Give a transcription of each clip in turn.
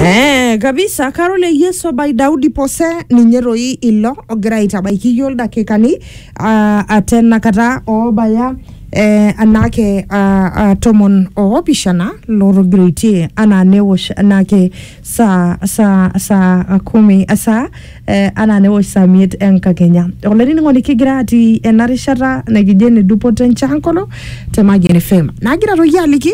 Eh, kabisa karole yesu abai daudi pose ninye toi ilo ogira aitabaiki iyio ildakikani ah, ah, tenakata oobaya eh, anake ah, ah, tomon oopishana lotogiraitie anaa newosh anake saa saa saa kumi saa eh, anaa newosh saa miet enkakenya olainining'oni kigira atii ena rishata nikijo ene dupoto enchankolo te Mayian FM nagira toi aliki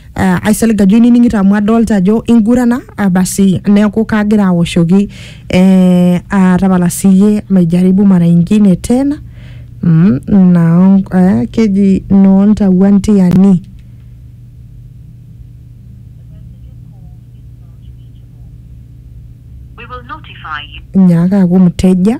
uh, aisilig ajo inining'ito amu adolta ajo ingurana uh, basi neeku kagira awoshoki eh, uh, tapala siyie maijaribu mara ingine tena mm, na, uh, keji noontawua ntiani We will notify you. nyaaka aaku mteja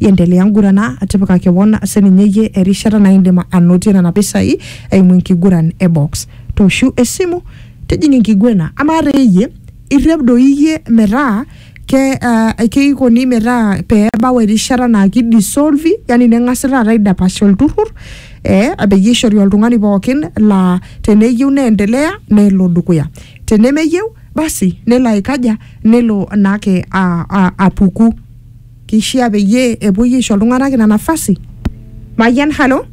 Iendelea ngurana tipika kewon sininye iyie erishata naa indim anotie nena pisai eimu enkiguran e box. Tooshu esimu tijing enkiguena. Amaa taa iyie irrep doi iyie metaa ke, uh, keikoni metaa peebau erishata naa kidisolvi yani neng'asi taata aidapash olturrur eh, peyie eishori oltung'ani pookin laa teneyieu neendelea nelo dukuya tenemeyieu basi nelo aikaja nelo naake uh, uh, apuku. Keishaa peyie epuoi aisho iltung'anak ina nafasi. Mayian, halo?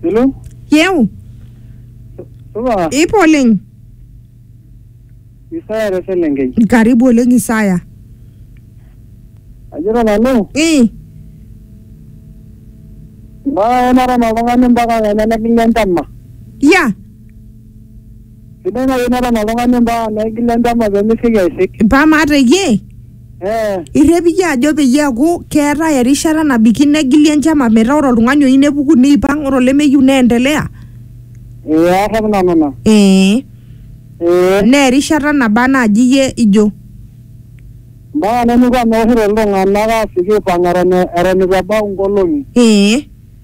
Hello? Yeu? Supa? Ipa oleng? Isaya te Selenkei. Karibu oleng Isaya. Ajito nanu, Ii, mbaa enaton oltung'ani mpaka kenya nekinyu entama. ya, Sidai naaji teneton oltung'ani mpaka negila entama pee mesioki aisik. Mpaka maata iyie? Eh. Irrep iyie ajo peyie eeku keetae erishata nabiki negili enchama metaa ore oltung'ani oyieu nepuku neipang ore olemeyieu neendelea? Ee arrep nanu ina. Ee. Ee. Naa erishata nabaa naaji iyie ijo? Mpaka nemepuo amu ewoshito iltung'anak aasioki aipang eton eitu ebau nkolong'i. Ee.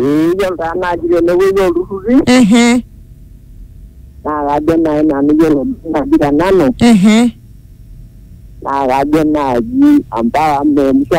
Ee, iyiolo taa naaji tenewueji olturrurri ehe naa kajo naaji nanu iyiolo naaji tenanu ehe naa kajo naaji ambao amu meemisho